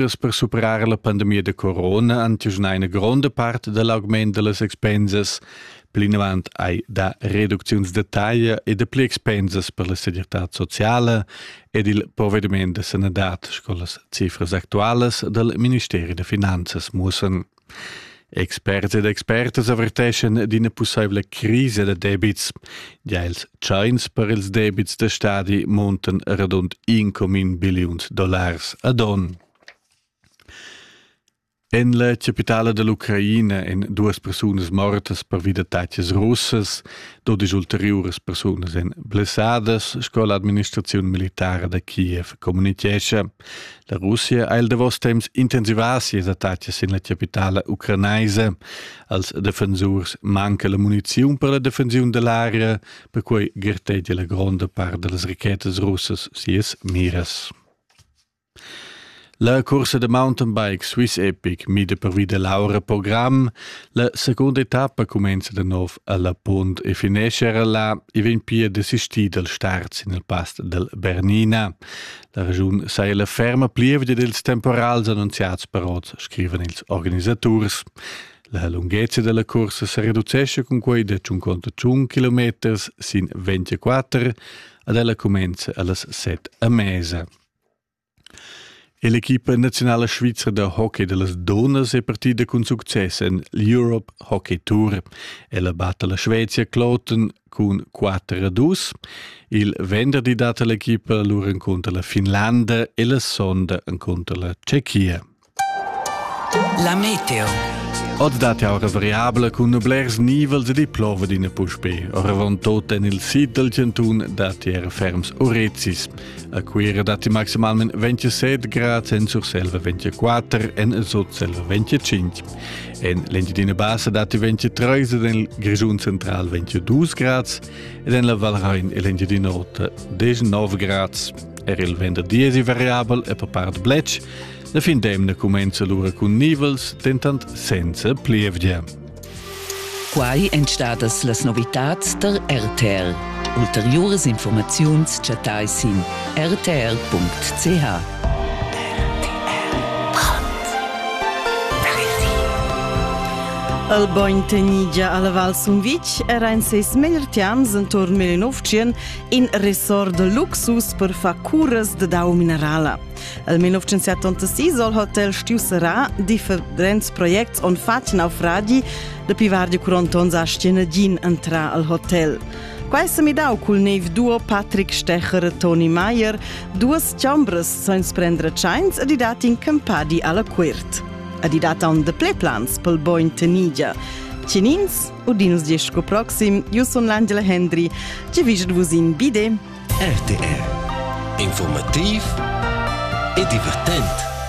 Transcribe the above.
Gest per superar la pandemia da corona han una gronda part dell'augment delle expensas. Plinavant hai da reducziuns de taglia e de pli expensas per la segirtà sociale ed il provvediment de sanadad, sco las cifras actuales del Ministeri de Finanzas mussen. Experts ed expertas averteschan d'ina pussaivla crisa da debits. Gia ils tschains per ils debits da stadi muntan radund 1,1 billiuns dollars ad onn. En la capitala dell'Ucraina èn duas persunas mortas pervi d'attacks russas, dodisch ulteriuras persunas èn blessadas, sco l'administraziun militara da Kiev communitgescha. La Russia ha il davos temps intensivà sias attacas sin la capitala ucranaisa. Als defensurs manca la muniziun per la defensiun da l'aria, perquai gartegia la gronda part da las rachetas russas sias miras. La cursa da mountain bike Swiss Epic mida pervi da l'aura program. La seconda etappa cumenza da nov a La Punt e finesce era là e vegn pia desistì dal start sin il pass dal Bernina. La regiun saja la ferma plievgia dils temporals annunziats per oz, scrivan ils organisaturs. La lunghezza della corsa se reducesce con quei de tschun conto tschun kilometers sin 24 ad ella comenza allas 7 a mesa. E l'equipa nazionala svizra da hockey de las Donas è partida con succes en l'Europe Hockey Tour. Ella batta la Svezia Kloten cun 4-2. Il venderdi dat l'equipa lur encunter la Finlanda e la sonda encunter la Tschechia. La meteo. Oz date auras variabla cun blers nivels e di plova d'ina puspe. Oravant tot en il sid del Centun dati era ferms orezis. A Cuira dati maximalment 27 grad, en Surselva 24, en Sotselva 25. En l'Engiadina Bassa datti 23 ed en il Grischun Central 22 grads ed en la Val Rain e l'Engiadina Rotta 19 grads. Er il venderdi è variabel e per part bletsch. La fin d'emna cumenza l'ura cun nivels, dentant senza plievgia. Quai èn stadas las novitads tar RTL. Ulteriuras informaziuns chattai sin rtl.ch. El bogn tenigia alla Val Sumvitg era in ses meglier tiams entorn 1900 in resort de luxus per far curas de dau minerala. El 1976 soll Hotel Stiu Serà differents projects on fatg naufragi de pivar di curonton a Stienedin entra al hotel. Quai s'è midau cul nev duo Patrick Stecher e Toni Meier, duas chambras san prendere tschains ed i dat in campadi alla cuert. Ed i dat on de pleplans pel boin tenigia. Cinins, udins disco proxim, io son l'Angela Hendry, ci viget vus in bide. RTR Informativ e divertent.